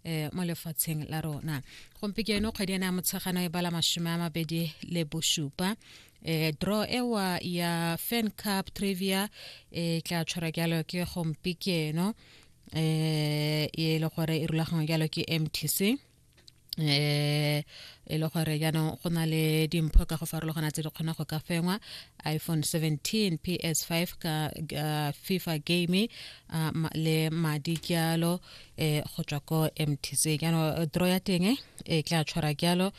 eh mo lefatsheng la rona gompieno kgwedi ena ya motshegano e bala mashome a mabedi le bosupa eh draw ewa ya fan cup trivia e tla tshwara jalo ke gompieno eh e le gore e rulagangwe jalo ke mtc eh e le gore jaanong go na le dimpho ka go farologana tse di kgona go ka fengwa iphone 17 ps5 ka uh, fifa game uh, le madi jalo eh go tswa ko mtc jaanong eh, dro ya teng e eh, tla tshwara jalo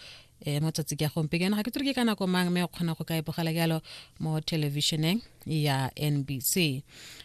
eh mo tsatsi ke gompe kana ga ke tsere ke kana ko mang me o kgona go ka e bogela jalo mo televisioneng ya NBC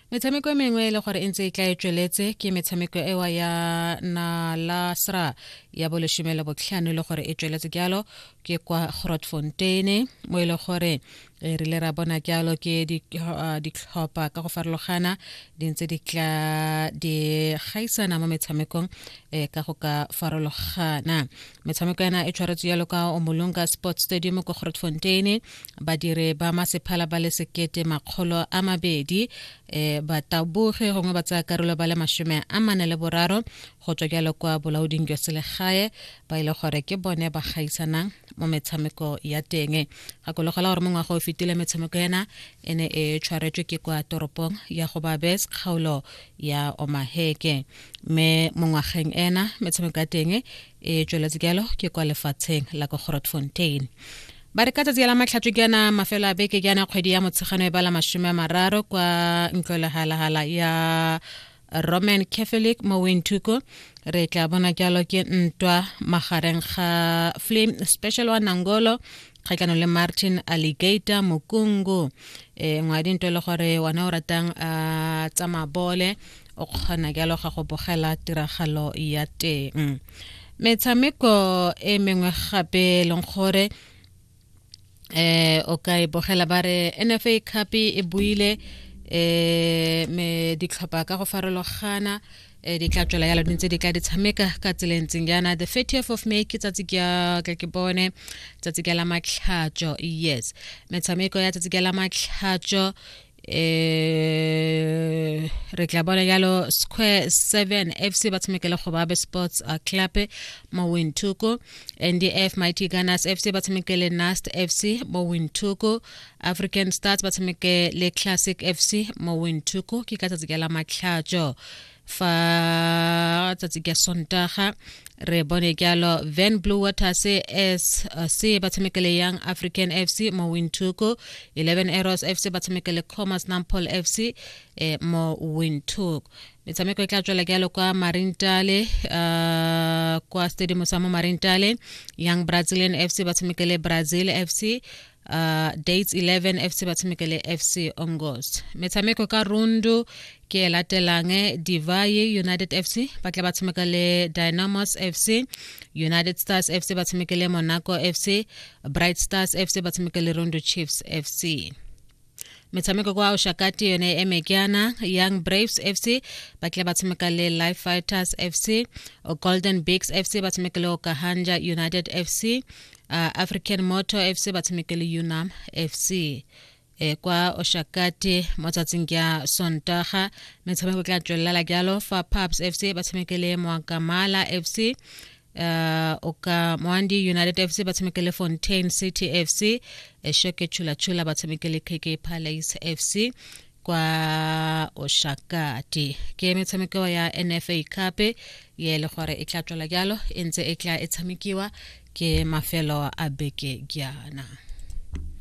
metshameko e mengwe e le gore e ntse e tla e tsweletse ke metshameko ewa ya nalasra ya boleshome le botlhano e le gore e tsweletse jalo ke kwa grotfonteine mo e le gore re rile ra bona jalo ke uh, ditlhopha ka go farologana di ntse di tla di gaisana mo metshamekong um ka go ka farologana metshameko yana e tshwaretswe jalo ka omolonga sports stadium ko grotfontein badiri ba masephala ba le sekete makgolo a mabedi um bataboge gongwe ba tsaya karolo ba le masome a mane le boraro go tswa jalo kwa bolaoding jwa selegae ba ile e gore ke bone ba gaisanang mo metshameko ya teng gakologela gore mo ngwaga o fetile metshameko ena e ne e tshwaretswe ke kwa toropong ya go babes kgaolo ya omaheke mme mo ngwageng ena metshameko ya teng e tsweletse jalo ke kwa lefatsheng la ko grotfontein ba re ka tsatsi la matlhatso ke ana mafelo a beke ke ana kgwedi ya motshegano e bala masome a mararo kwa ntlo ya roman catholic mo wenthuko re tla bona jalo ke ntwa magareng ga flame special wa nangolo kgatlhanong le martin alligator mokungu e eh, ngwadi ntwe le gore wona o ratang a ah, tsa mabole o kgona jalo ga go bogela tiragalo ya teng metshameko e mengwe gape e leng gore eh o ka e bogela ba re nfa cup e buile eh me ditlhopha ka go farologana eh di tla tswela yalo ntse di tla di tshameka ka tsela e ntseng yana the 30th of may ke tsatsi ke ke ke bone tsatsi ke la matlhatso yes metshameko ya tsatsi ke la matlhatso eh re tla bona jalo square 7 fc ba tshamekela go babe sports uh, club mo wintuko ndf mighty gunners fc ba tshamekele nast fc mo wintuko african stars ba tshamekele classic fc mo wintuko ke ka tsatsi ka la matlhatso fa tsatsi ka sontaga re bone jalo van blue waters sc ba tshamekele young african fc mo wintuku 11 arrows fc ba tshamekele commerce nampol fc eh, mo wintuku metshameko e tla tswela jalo kwa marintale uh, kwa stadium sa mo marintale young brazilian fc ba tshamekele brazil fc uh, dates 11 fc ba tshameka le fc ongos metshameko ka rundu ke e latelang divaye united fc ba tla ba tshameka le dynamos fc united stars fc ba tshameka le monaco fc bright stars fc ba tshameka le rondo chiefs fc metshameko kwa oshakati yone e eme keana young braves fc ba tlile ba tshameka le life fighters fc golden bigs fc ba tshameka le okahanja united fc uh, african motor fc ba tshameka le unam fc e kwa oshakati mo tsatsing ya sontaga metshameko tla tswelela jalo fa paps fc ba tshamekele moakamala fc uh, o ka moandi united fc ba tshameke le fontaine city fc eshoke chulachula ba tshameke le kk palace fc kwa oshakati ke metshameko ya nfa cup ye le gore e tla tswela jalo e ntse e tla e tshamekiwa ke mafelo a beke jaana